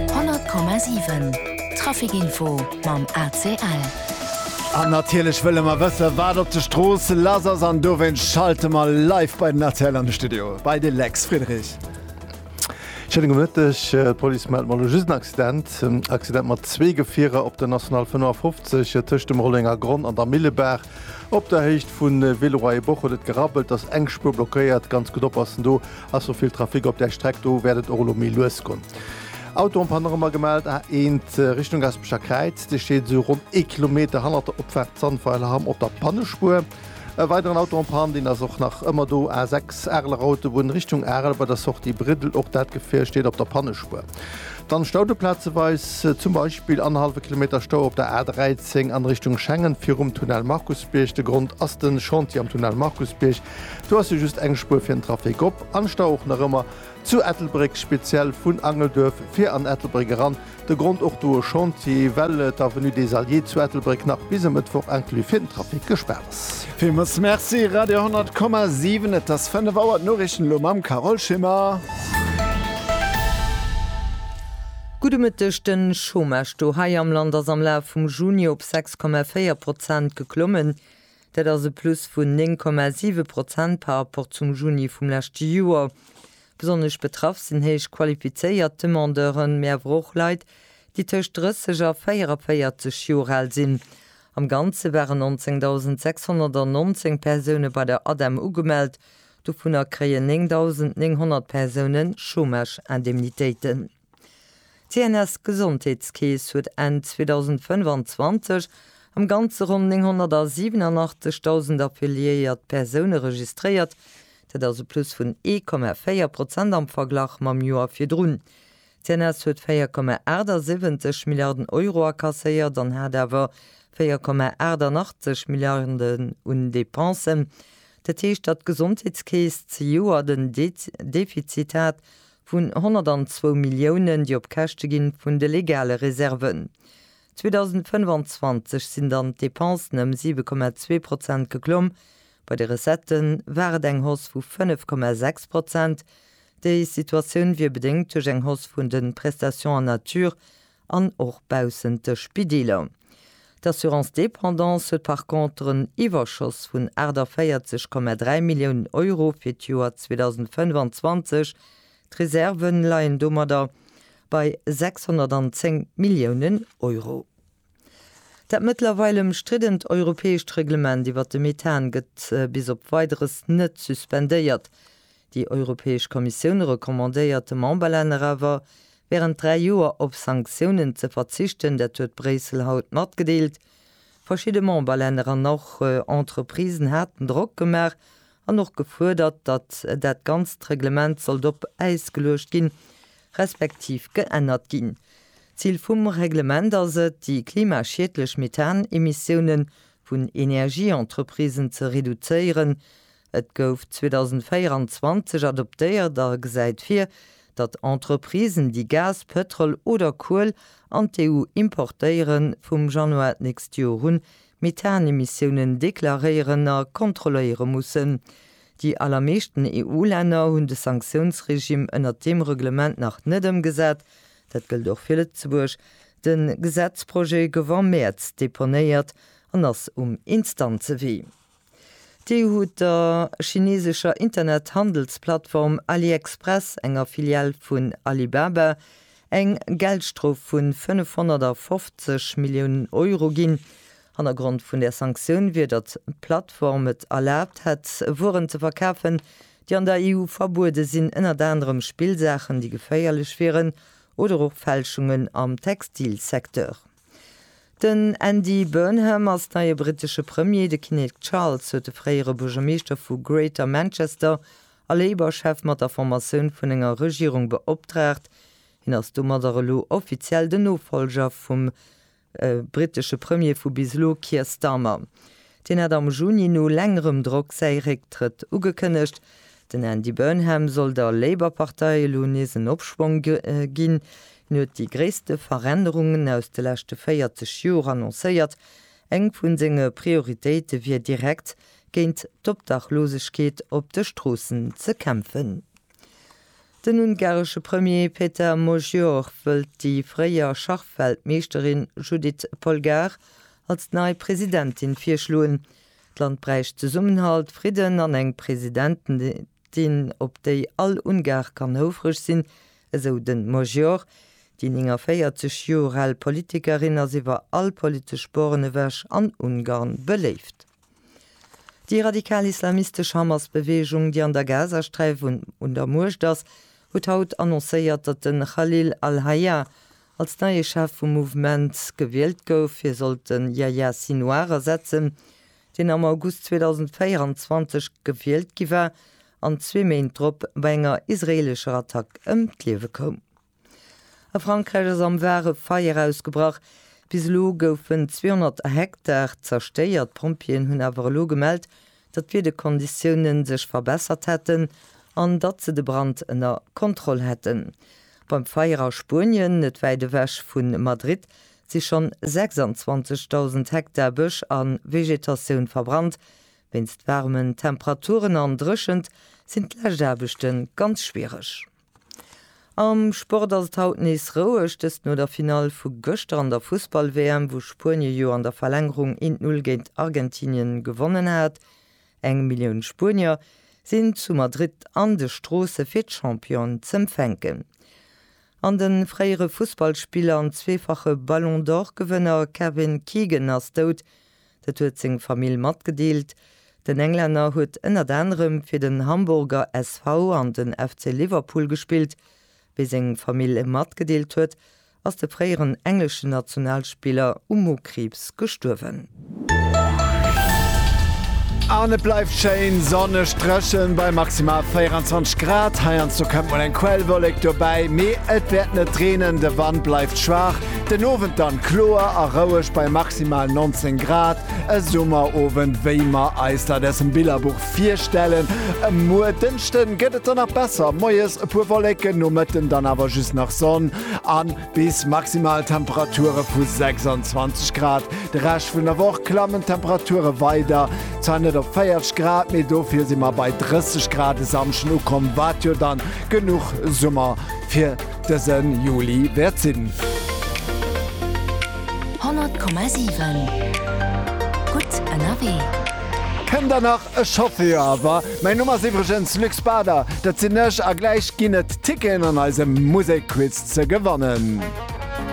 100,7 Trafic Info mam ACL. An natierlech wëlle mer wëssen, wat op de Stroosse lass ass. An dowéinst schalte mer live bei den ACL an de Studio, bei de Lex Friedrich. Schéine gudde Mëtteg. D'Police mellt mer elo just en Accident. Accident mat zwee Gefierer op der National 55 tëscht dem Rollenger Gronn an der Millebaach. Op der Héicht vu Villeroy-et-Boch huet et gerabbelt, ass eng Spuer blockéiert. Ganz gutt oppassen, do ass scho vill Trafic op där Streck, do wäert et och elo méi lues gonn. Auto am Panorama gemellt, A1 Richtung Gaspecher Kräiz, dee steet esou ronn ee Kilometer hannert der Opfaart Zandweiler-Hamm op der Pannespuer. E weideren Auto en panne, deen ass och nach ëmmer do, A6 Areler Autobunn Richtung Arel bei der Sortie Briddel, och dat Gefier steet op der Pannespuer. Dann Staude plazeweis, zum Beispill annerhallwe Kilometer Stau op der A13 an Richtung Schengen virum Tunnel Markusbierg. De Grond ass den Chantier am Tunnel Markusbierg. Do ass jo just eng Spuer fir den Trafic op. An Stau och nach ëmmer zu Ettelbréck, speziell vun Angelduerf fir an Ettelbréck eran. De Grond och do e Chantier, well d'Avenue des Alliés zu Ettelbréck nach bis e Mëttwoch inclus fir den Trafic gespaart ass. Villmols Merci Radio 10,7 et ass 5 Auer d'Noriichten elo mam Carole Schimmer. Gudde Mëtteg, De Chômage do hei am Land ass am Laf vum Juni op 6,4 Prozent geklommen. Dat ass e Plus vun 9,7 Prozent par rapport zum Juni vum leschte Joer. Besonnesch betraff sinn héich qualifizéiert Demandeuren, mee awer och Leit, déi tëscht 30 a 44 Joer al sinn. Am Ganze waren 19.619 Persoune bei der ADEM ugemellt, dovunner kréien 9.900 Persoune Chômage-Indemnitéiten. D'CNS-Gesondheetskeess huet Enn 2025 am Ganze ronn 987.000 affiliéiert Persoune registréiert, dat ass e Plus vun 1,4 Prozent am Verglach mam Joer virdrun. D'CNS huet 4,78 Milliarden Euro akasséiert an hat awer 4,88 Milliarden un Depensen. Dat heescht, datt d'Gesondheetskeess zejoert en Defizit hat vun 102 Milliounen, déi op Käschte gi vun de legale Reserven. 2025 sinn dann d'Depensen ëm 7,2 Prozent geklomm, Bei de Recettë war et eng Hausse vu 5,6 Prozent. Déi Situatioun wier bedéngt duerch eng Hausse vun de Prestations en nature an och baussent de Spideeler. D'Assurance dépendance huet par contre en Iwwerschoss vun 48,3 Milliounen Euro fir d'Joer 2025. D'Reserven leien domadder bei 610 Milliounen Euro. Dat mëttlerweil ëmstriddent europäescht Reglement iwwert de Methan gëtt bis op Weideres net suspendéiert. Déi Europäesch Kommissioun recommandéiert de Memberlänner awer, wärend dräi Joer op Sanktiounen ze verzichten, dat huet Bréissel haut matgedeelt. Verschidde Memberlänner an och Entreprisen haten Drock gemaach, an och gefuerdert, datt dat ganzt Reglement sollt op Äis geluecht ginn, respektiv geännert ginn. D'Zil vum Reglement ass et, déi klimaschiedlech Methan-Emissioune vun Energieentreprisen ze reduzéieren. Et gouf 2024 adoptéiert a gesäit vir, datt Entreprisen, déi Gas, Pëtrol oder Kuel an d'EU importéieren, vum Januar d'nächst Joer un Methanemissiounen deklaréieren a kontrolléiere mussen. Déi allermeeschten EU-Länner hunn de Sanktiounsregime ënnert deem Reglement nach net ëmgesat. Dat gëllt och fir Lëtzebuerg. De Gesetzprojet gouf am Mäerz deponéiert an ass um Instanzewee. D'EU huet der chineesescher Internethandelsplattform AliExpress, enger Filial vun Alibaba, eng Geldstrof vu 550 Milliounen Euro ginn. Hannergrond vun där Sanktioun wier, datt d'Plattform et erlaabt hätt, Wueren ze verkafen, déi an der EU verbuede sinn, ënnert anerem Spillsaachen, déi geféierlech wieren, oder och Fälschungen am Textilsecteur. Den Andy Burnham ass neie brittesche Premier. De Kinnek Charles huet de fréiere Buergermeeschter vu Greater Manchester a Labour-Chef mat der Formatioun vun enger Regierung beoptraagt. Hien ass domadder elo offiziell den Nofollger vum brittesche Premier vu bis elo Keir Starmer. Deen hat am Juni no längerem Drock säi Récktrëtt ugekënnegt. Den Andy Burnham soll der Labour-Partei elo nees en Opschwong ginn. Hien huet déi gréisste Verännerungen aus de leschte 40 Joer annoncéiert. Eng vu senge Prioritéite wier direkt géint d'Obdachlosegkeet op de Stroossen ze kämpfen. Den ungaresche Premier Peter Magyar wëllt déi fréier Schachweltmeeschterin Judit Polgár als nei Presidentin virschloen. D'Land bräicht Zesummenhalt, Fridden an eng Presidentin, op déi all Ungar kann houfreg sinn, esou de Magyar. Déi 49 Joer al Politikerin ass iwwer all politesch Boren ewech an Ungarn beléift. Déi radikal islamistesch Hamas-Beweegung, déi an der Gazasträif un der Muecht ass, huet haut annoncéiert, datt de Khalil al-Hayya als neie Chef vum Mouvement gewielt gouf. Hie sollt de Yahya Sinouar ersetzen, deen am August 2024 gewielt gi war an zwee Méint drop bei enger israeelescher Attack ëm d'Liewe koum. A Frankräich ass am Var e Feier ausgebrach. Bis elo goufen 200 Hektar zerstéiert. D'Pompjeeën hunn awer elo gemellt, datt d'Wiederkonditioune sech verbessert hätten an datt se de Brand ënner Kontroll hätten. Beim Feier a Spuenien, net wäit ewech vu Madrid, si schonn 26.000 Hektar Bësch a Vegetatioun verbrannt. Wéinst waarmen Temperaturen an Dréchent sinn d'lescht Aarbechte ganz schwiereg. Am Sport ass et haut nees roueg, dëst no der Finall vu gëschter an der Fussball-WM, wou Spuenie jo an der Verlängerung eent Null géint Argentinien gewonnen hat. Eng Millioun Spuenier sinn zu Madrid an de Stroosse fir d'Championen z'empfänken. An de fréiere Fussballspiller an zweefache Ballon d'Or-Gewënner Kevin Keegan ass dout. Dat huet seng Famill matgedeelt. Den Englänner huet ënnert anerem fir den Hamburger SV an den FC Liverpool gespillt. Wéi seng Famill e matgedeelt huet, ass de fréieren engleschen Nationalspiller u Mokriibs gestuerwen. An et bleift schéin sonneg, dréchen bei maximal 24 Grad. Heiansdo kënnt mol eng Quellwollek dobäi, mee et wäert net reenen. De Wand bleift schwaach, Den Owend dann kloer a roueg bei maximal 19 Grad, e Summerowend wéi mer eis dat aus dem Billerbuch virstellen. Em muer Dënschden gëtt et dann nach besser, moies e puer Wolleken, no Mëtten dann awer just nach Sonn an bis maximal Temperature vu 26 Grad. De Rescht vun der Woch klammen d'Temperature weider, zwar net op 40 Grad, mee dofir si mer bei 30 Grad e Samschden ukomm, wat jo dann genuch Summer fir dësen Juli wäert sinn. 100,7 gutt ënnerwee. Kënnt der nach e Chauffeur awer? Mäin Numm ass iwwregens Luc Spader, dat sinn ech, a gläich ginn et Ticketen an eisem Musekquiz ze gewannen.